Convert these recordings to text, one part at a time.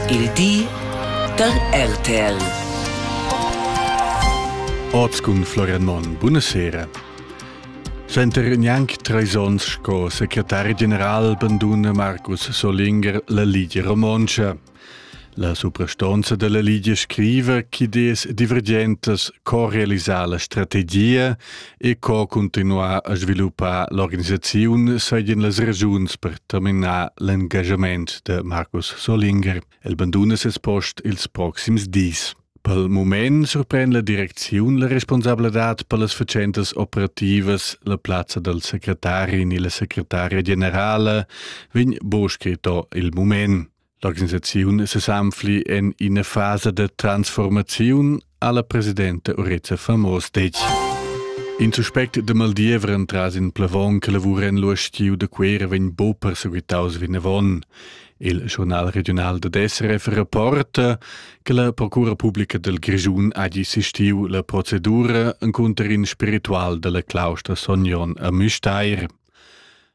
Il di da RTL. Oz cun Florian Monn. Buonasera. Center gnanc treis onns sco secretari general banduna Markus Solinger la Ligia Romontscha. La suprastonza della Ligia scriva che des divergentas co realisar la strategia e co cuntinuar a sviluppar l'organisaziun seigien las regiuns per terminar l'engagement de Markus Solinger. El banduna ses post ils proxims dis. Pel moment surpren la direcziun la responsabladad per las facentas operativas la plazza del secretari ni la secretaria generala vegn bo scritto il moment. L'organisaziun sesanfli en ina fasa da transformaziun alla presidenta Urezza Famos detg. In suspect de Maldievre entras in plavon che lavura en l'uostiu de Quera vegn bo perseguitaus vinavon. Il journal regional de SRF rapporta che la procura pubblica del Grigiun ha assistiu la procedura inconter in spiritual della claustra Sognon a Müstair.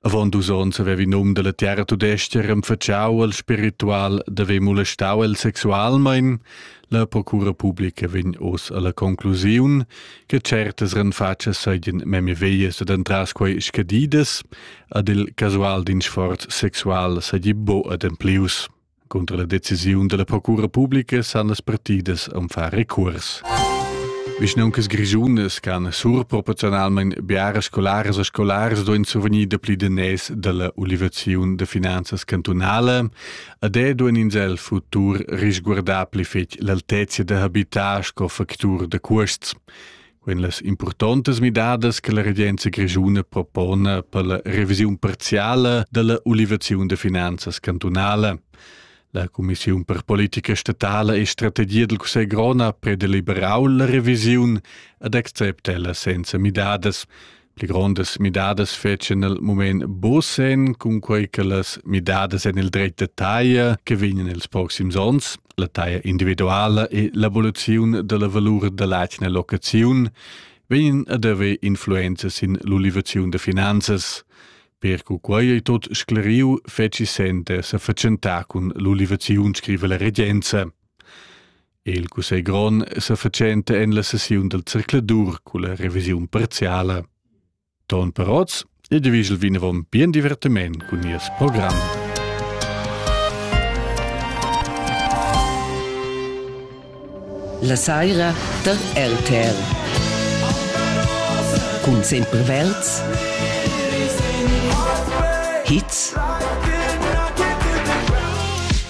Avon dus onns havevi num dalla terra tudestga renfatschau al spiritual d'haver molestau el sexualmein. La procura publica vegn oz alla conclusiun che certas renfatschas seigien memia veias ed entras quei scadidas, ad il casual din sforz sexual seigi buca ademplius. Cunter la decisiun dalla procura publica san las partidas am far recurs. Vischnauncas grischunas can surproporziunalmein biaras scolaras e scolars duein survegnir dapli daners dalla ulivaziun da finanzas cantunala ed è duein ins el futur risguardar pli fetg l'altezia da habitar sco factur da cuosts. Quin las impurtontas midadas che la regenza grischuna propona per la revisiun parziale della ulivaziun de finanzas cantunale. La Commissiun per politica statale e strategia del Cussegl Grona predeliberau la revisiun ad accepta ella senza midadas. Pli grondas midadas fetschan il mument buc sen cun quei che las midadas en il dretg da taglia che vegnan ils proxims onns, la taglia individuala e l'evoluziun della valur dell'atgna locaziun, vegnan ad haver influenzas in l'ulivaziun de finanzas. Per cu quei ei tot scleriu, feci sente sa fatschentar cun l'ulivaziun, scrive la regenza. Il cussegl grond sa fatschenta en la sessiun dal circladur culla revisiun parziala. Ton Perotz e divigel vinavon bien divertiment cun nies program. La saira da RTR. Cun sempre verds, hits